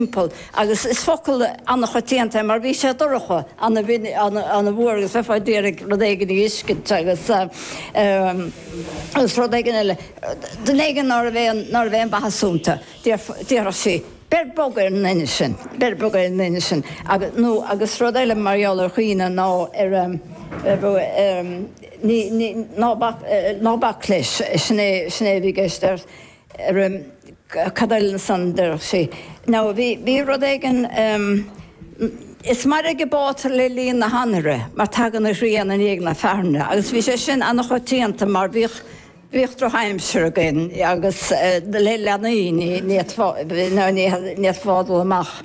timpeall, agus is focal an-choitianta é mar bhí sé dorcha, an-fhuar agus bheifeá ag iarraidh rud éigin a fheiscint agus rud éigin eile, duine éigin nárbh é an-mhaitheasúnta, déarfadh sí, beir bog ar an nduine sin, beir bog ar an nduine sin, nó agus rud eile mar gheall ar dhaoine nár, ná bac leis, sin é a bhí i gceist. Rem. cad eile ansan déarfadh sí ná bhí rud éigin em. is mairg a bátar le linn an anaithe mar tagann an ghrian i ndiaidh na fearthaine agus bhí sé sin ana-choitianta mar bhíodh bhíodh droch-aimsir againn agus le leanaí ní fhéadfá dul amach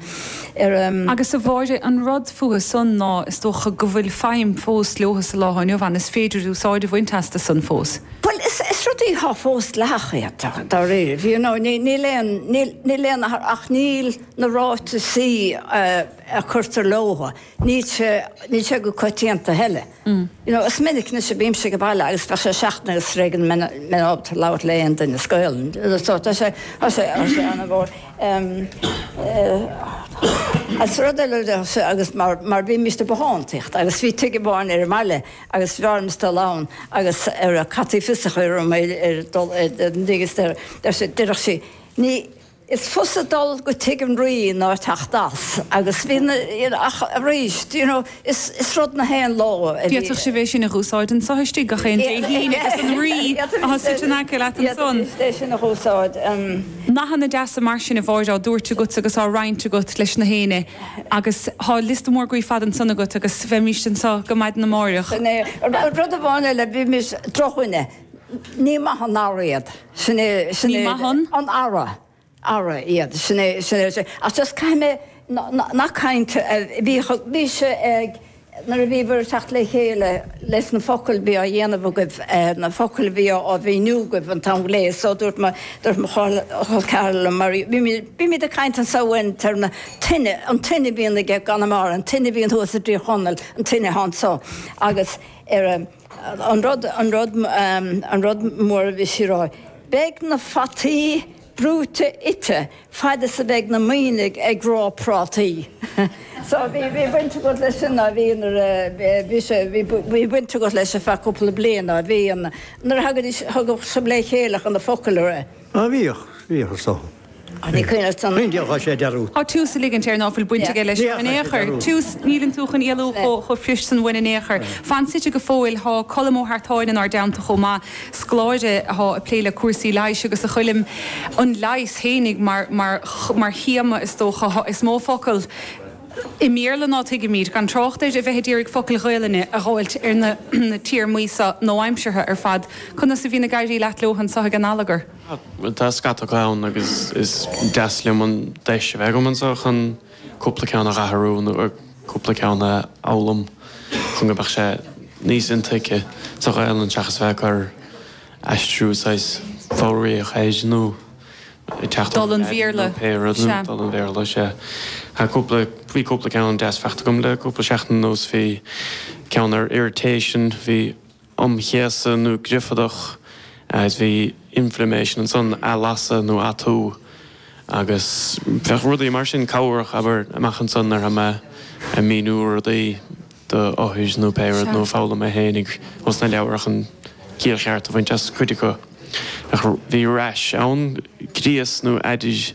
ar agus a Mháire, an rud fúthu san ná is dócha go bhfuil feidhm fós leothu sa lá inniu ann, is féidir úsáid a bhaint astu san fós. Bhuel, is rudaí atá fós dleathach iad, dáiríribh, you know, níl aon, níl, níl aon, ach níl na ráiteasaí a curtar leothu, níl sé, níl sé go coitianta a thuilleadh. You know, is minic anois a bímse ag baile agus bheadh sé seachtain agus tar éis go mbeinn, mbeinn ábalta labhairt le aon duine as Gaolainn. So tá sé, tá sé, tá sé an-mhór. Agus rud eile, agus mar, mar bhí bímist ag bothántaíocht agus bhí tigh amháin ar an mbaile, agus bheimis ag dul ann agus ar a caití fios a chur orm é ar dul ar an dtig is ar sé déarfadh sí ní Is fusa dul go tig an rí ná teacht as agus bhí na you ach arís do you know is is rud 'chaon ló a bhí D'fhéadfadh sibh é sin a dh'úsáid anso istigh gach aon Dé hAoine agus an rí atá suite in aice leat ansan. D'fhéadfadh é sin a dh'úsáid. nathanna deasa mar sin a Mháire á dtabhairt agatsa agus á roinnt agat leis na daoine. Agus tá liosta mór groí fada ansan agat agus bheimís anseo go maidin amáireach. Sin é. Rud amháin eile, bímis drochdhuine. Ní maith an earra iad. Sin é, sin é. Ní maith an? An earra. Earra iad. Sin é, sin é. Ach just caithfidh mé nach caint, bhí, bhí sé ag nuair a bhíobhair ag teacht le chéile leis na focail a bhí á dhéanamh agaibh, na focail a bhí á mhíniú agaibh an t-am go léir. So dúirt mo, dúirt mo chol ceathar liom, mar bímid ag caint anseo iarthar na tíre, an duine a bhíonn i gConamara, an duine a bhíonn thuas i dTír Chonaill, an duine atá anseo. Agus ar an an rud, an rud, an rud mór a bhí sí ag rá, beidh na fataí, brúite ite, fad is a bheidh na Muimhnigh ag rá prátaí. So, bhí baint agat leis sin, á, bhí, nuair a, bhí sé, bhí baint agat leis ar feadh cúpla bliain, á, bhí an, nuair a thagaidís, thagadh sibh le chéile chun na focail a. Á, bhíodh, bhíodh, is dócha. Á, bhí coinne agat san. Bhíodh, á, sé, dearúd. Á, tusa ag ligint air ná fuil baint aige leis in aon chor, tusa, níleann tú chun éalú chomh chomh fuirist san uainn in aon chor. Fan suite go fóill, tá Colm Ó hArtáin inár dteannta chomh maith. scoláire atá ag plé le cúrsaí leighis agus ag foghlaim an leighis féinig mar théama, is dócha. Is mó focal i mBéarla ná tuigimid, gan trácht ar bheith ag iarraidh focail Ghaelainne a dh'fháilt ar na téarmaí seo nua-aimseartha ar fad. Conas a bhíonn ag éirí leat leo anso ag an allagar? Tá scata acu ann agus is deas liom an deis a bheith agam anso chun. cúpla ceann a dh'athrú nó cúpla ceann a fhoghlaim chun go mbeadh sé níos intuigthe sa Ghaelainn seachas bheith ag cur aistriú saghas foghraíoch air nó ag teacht Dul an Bhéarla, sea. Dul an Bhéarla, sea. Bhí cúpla ceann deas fachta agam le cúpla seachtain anuas. Bhí ceann ar irritation, bhí um chéasadh nó griofadach, agus bhí inflammation ansan, athlasadh nó atú, agus bheadh rudaí mar sin cabhrach, abair, amach ansan ar feadh mé ag míniú rudaí do othair nó pé rud, nó ag foghlaim mé féinig as na leabhair chun ciall cheart a bhaint as cuid acu. Bheadh bhí rash ann, gríos nó aided.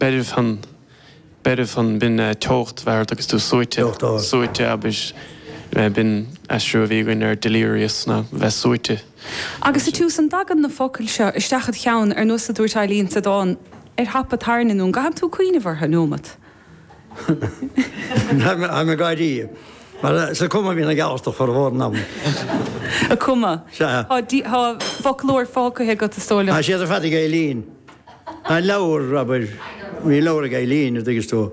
Beirfean, beirfean, b'in eh, teocht a bheith ard agus tú suaite, suaite, abair, eh, b'in aistriú a bhí againn ar delirious ná bheith suaite. Agus sa tiús an dtagann na focail seo isteach id cheann ar nós a dúirt Eileen sa dán ar thapa tairne nó an gcaitheann tú cuimhneamh orthu neomat? I'm a gardaí. Mar eh, sa cuma bhí na geallta formhór an ama. A cuma. Sea. Thá, thá foclóir fachta agat is dóigh liom. Tá siad ar fad ag Eileen. An leabhar, abair. Bhí leabhar ag Eileen, a dtuigeas tú,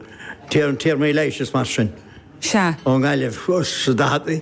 Téarmaí Leighis is mar sin. Sea. Ón nGaillimh, sa daichead.